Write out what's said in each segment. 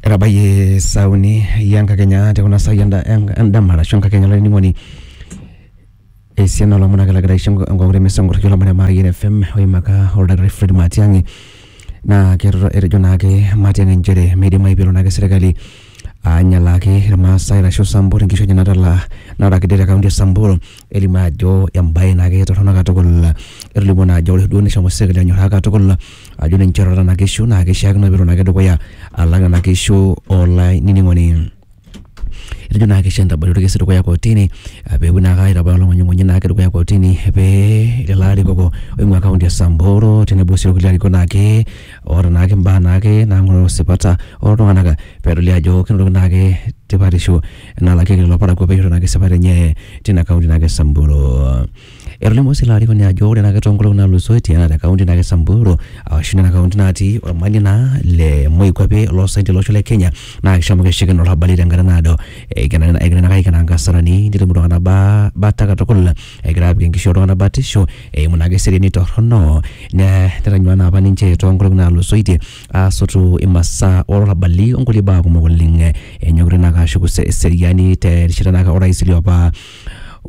Etabayie saa uni enkakenya te kuna saai endama arashu enkakenya olainining'oni esiana oo lomon ake lagira aisho enkong'u te mesa nkoraki lomon le Mayian FM oimaka oldakitari Fred Matiang'i naa keirridu etejo naake Matiang'i inchere meidimayu peelo naake sirkali anyalaaki irmaasai arashu Sambur inkishu enye natalaa naata kiti te kaunti e Sambur elimu ajo embae naa ketorrono katukul etolimuo naa ajo ore duo neshomo sirkali anyorraa katukul ajo ninche oota nena kishu naa kishiakino peelo naake dukuya alang nena kishu olainining'oni etejo naa kisho entabari orkesi dukuya kotini eh peepuo naake aitabaya olong'unying'unyi naake dukuya kotini pee lelo arikoko oing'ua kaunti e samburu tenebo sii orkulie arikok naake oota naake imbaa naake nang'oroo esipata oltung'anak pedoli ajo kenotoki naake tipatisho. enalakeki lelo parakuo peishori ina kisipata enye tina kaunti naake e Samburu. Etolimuo sii ilo arikoni ajo ore naake toonkolong'i naatulusoitie naa te kaunti naake e Samburu ashu nena kaunti natii olmanie naa le moikuape loo saen tolosho le Kenya naa kishomo keshukokino olarrabali tenkata naado egira naake aikenaa inkasarani netum iltung'anak ba bata katukul egira apik enkishui oltung'anak batisho eimu naake eseriani torrono ne netanyuaa naapa ninche toonkolong'i naatulusoitie asotu imasaa olarrabali onkulie baa kumok oleng eh, enyokita naake ashuku se- eseriani terishata naake orais liopa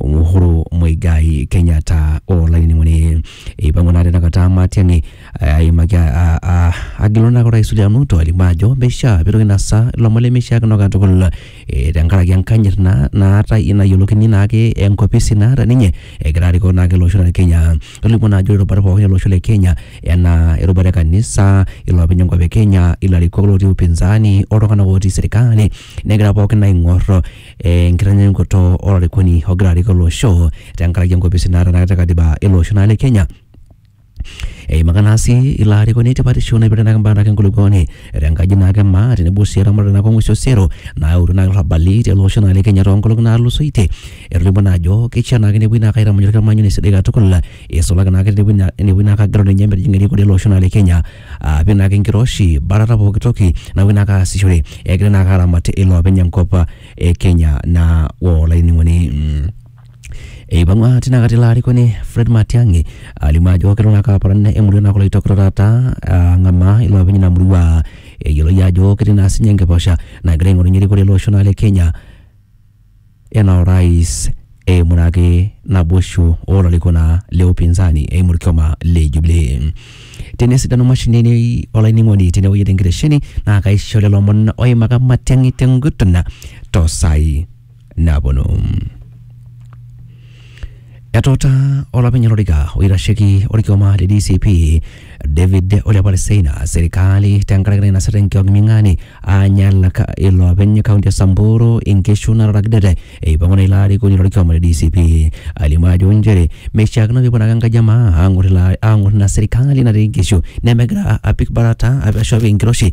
Uhuru Muigai Kenyatta olainining'oni eipang'u naa tinakata Matiang'i eh, aimaki a- a- agilu naake orais William Ruto alimu ajo meishia pitoki nasa ilomon lemeishiakino katukul eh, tenkaraki enkanyit naa naata nayiolokini naake enkopisi naata ninye egira arikoo naake olosho le Kenya Tolimu naa ajo irubat pookin ele osho le Kenya enaa erubata e kanisa, iloopeny enkop e Kenya, ilarikok lootii upinzani oltung'anak ootii serikali negira pookin aing'or enkitanyaanyukoto olarikoni ogira arik ele osho tenkaraki enkopisi naata ena kata e katiba ele osho naa le Kenya. Eimaka naa sii ilo arikoni tipatishu naipirta naake imbaa naake enkulukuoni tenkaji naake e maa tenebo sii eramatare naake oo ng'uesi osero naayautua naake ilarrabali tele osho naa le Kenya toonkolong'i naatulusoitie Etolimuo naa ajo keishaa naake nepuoi naake aitamanyu orkitamanyune sidai katukul eisulaki naake tenepuoi naa enepuoi naake agelu ninye metijing'a erikore ele osho naa le Kenya apik naake enkiroshi batata pooki toki napuoi naake aasishore egira naake aramat iloopeny enkop e Kenya naa olainining'oni. Eipang'ua tina kata ilo arikoni Fred Matiang'i alimu ajo kelo naake aparan emurua naa kulo oitokitok taata ang'amaa iloopeny ina murua eyioloi ajo ketii naa siinye enkiposha nagira aing'orunyie erikore ele osho naa le Kenya ena orais eimu naake naboisho olarikona le upinzani eimu orkioma le Jubilee. Tenesidanu mashinini olainining'oni tenewueji tenkitesheni naa kaisho lelo omon oimaka Matiang'i tenguton tosaai naponu. Etuutaa olopeny olorika oitasheki olkioma le DCP David Ole Apolo Seina serikali tenkaraki nainasita enkiok ming'ani aanyalaka iloopeny kaunti e Samburu inkishu nataragidete eipang'u naa ilo arikoni lolkioma le DCP alimu ajo nchere meishiakino peepuo naake enkaji e maa aang'or ilo aang'or ina serikali natii inkishu nemegira apik barata ashu apik enkiroshi